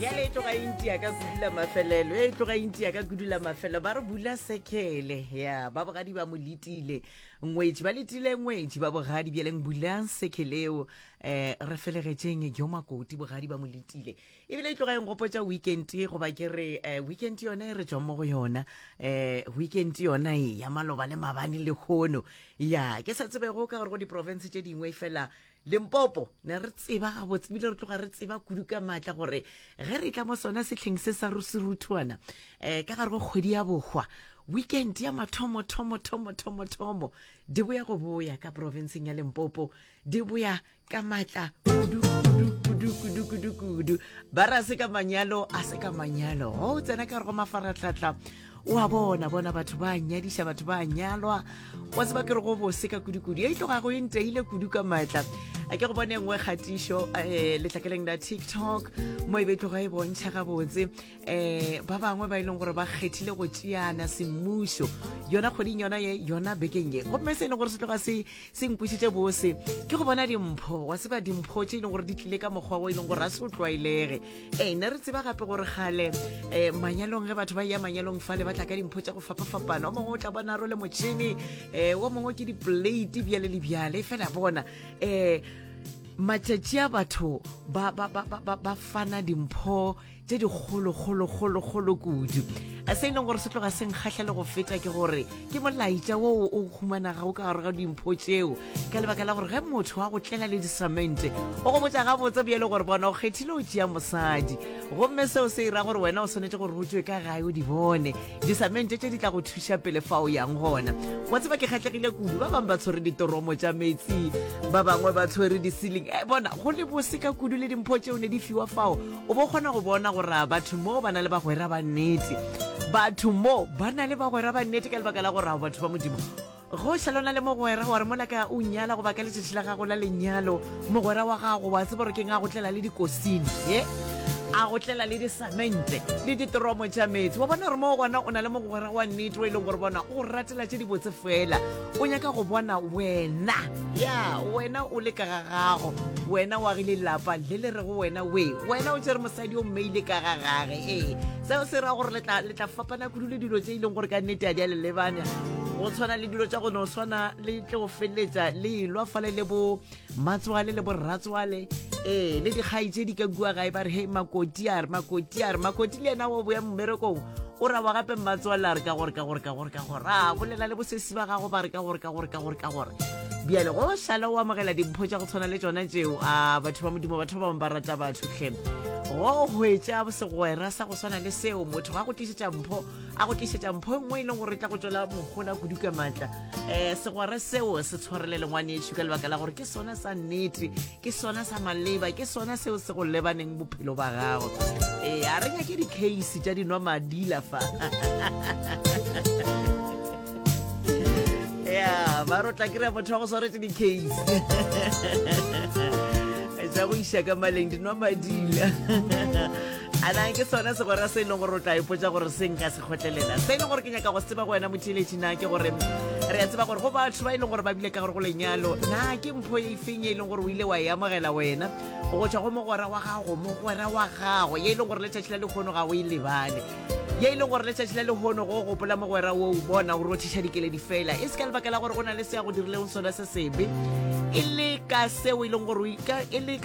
ya le tloga intia ka kudula mafelelo ya tloga intia ka kudula mafelelo ba re bula sekele ya ba bogadi ba mo letile ngwetši ba letile ngwetši ba bogadi bjaleng bulang sekeleo um eh, re felegetšeng jo makoti bogadi ba mo letile ebile e tloga e ngopotsa weekend goba ke re eh, weekend yone e re tswang mo go yona um weekend yona e ya maloba le mabane le kgono ya ke sa tsebego ka gore go diporofense tše dingwe fela Limpopo ne re tseba gabotse bile re tloga re tseba kudu ka maatla gore ge re tla mo sona setlheng se sa ruseruthuana um eh, ka gare go kgwedi ya bohwa weekend ya mathomo thomo thomo thomo thomo di boya go boya ka provinceng ya limpopo di boya ka maatla kudu kudu kudu kudu kudu kudu ba ra se ka manyalo a se ka manyalo go tsena ka gare go mafaratlatla wa bona bona batho ba nyadiša batho ba nyalwa wa tseba ke re go bose ka kudikudu e tlogago e nteile kudu ka maatla a ke go bone nngwe kgatišo um eh, letlakeleng la tiktok mo e be tloga e bontšha gabotse um ba bangwe ba e leng gore ba kgethile go tšeana semmušo yona kgweding yona ye yona bekeng ye gomme se e leng gore se tloga se se nkwisitše bose ke go bona dimpho wa seba dimpho tše e leng gore di tlile ka mokgwa o e leng gore a se o tlwaelege ee ne re tseba gape gore gale um manyalong ge batho ba ya manyalong fale ba tla ka dimpho tša go fapafapana o mongwe o tla bona ro le motšhene um o mongwe ke diplate bjale le bjale fela bona um matšatši a batho ba fana dimpho tse dikgolokgolokgolokgolo kudu se e leng gore se tloga se nkgatlha le go feta ke gore ke molaetša wo o humanaga o ka gare ga dimpho tšeo ka lebaka la gore ge motho wa go tlela le disamente o go botsa gabotse bjele gore bona o kgethile o tšea mosadi gomme seo se e ra gore wena o swanetse gore o tšwe ka gae o di bone disamente tše di tla go thuša pele fa o yang gona wa tseba ke kgatlhegile kudu ba bangwe ba tshwere ditoromo tša metsi ba bangwe ba tshwere di-ceiling e eh, bona go le bose ka kudu le dimpho tšeo ne di fiwa fao O bo kgona go bona gore a batho mo ba na le bagwera ba nnete. Batho mo ba na le bagwera ba nnete ka lebaka la gore a batho ba Modimo go šalona le mogwera wa re mola ka o nyala goba ka letšatši la gago la lenyalo mogwera wa gago wa tseba gore ke nga go tlela le dikosing e a go tlela le disamente le ditoromo tša metsi wa bona gore mo gona o na le mogwera wa nnete o e leng gore bona o ratela tše dibotse fela o nyaka go bona wena ya wena o le ka ga gago wena wa gile lapa le le rego wena we wena o tsere mosadi o mmeile ka ga gage ee seo se ra gore le tla fapana kudu le dilo tse e leng gore ka nnete a di a le lebanya go tshwana le dilo tsa go no swana le tle go feleletsa le elwa fale le bo matswale le borratswale ee le dikgai tse di ka kua gae ba re hei makoti a re makoti a re makoti le ena wa boya mmerekong o ra wa gape mmatswale a re ka gore ka gore ka gore ka gore a bolela le bosesi ba gago ba re ka gore ka gore ka gore ka gore bjale go šala o amogela dimpho tša go tshwana le tsona tseo a batho ba modimo batho ba bangwe ba rata batho tlhe go hwetša segwera sa go swana le seo motho ga go tlisetša mpho a go tlišetša mpho nngwe e leng gore e tla go tšwela mogola kudu ka maatla um segwara seo se tshwarele lengwanešu ka lebaka la gore ke sona sa nnete ke sona sa maleba ke sona seo se go lebaneng bophelo ba gago ee a re nyake di-case tša dinwa madila fa ya ba rotla kry-a motho wa go swaretse di-case tša go iša ka maleng dinwa madila ana ke sona segwera se e leng gore o tla ipotsa gore se nka se kgotlelela se e leng gore ke nyaka go se tseba go wena motheletši na ke gore re ya tseba gore go batho ba e leng gore ba bile ka gore go lenyalo na ke mpho e feng e leng gore o ile wa e amogela wena go tswa go mogwera wa gago mogwera wa gago ye e leng gore letšatši la lekgono ga o e lebale ye e leng gore letšatši la lekgono go gopola mogwera wo o bona o rothiša dikeledi fela e se ka lebaka la gore go na le se ya go dirileng sona se sebe e le ka seo e leng gore e le ka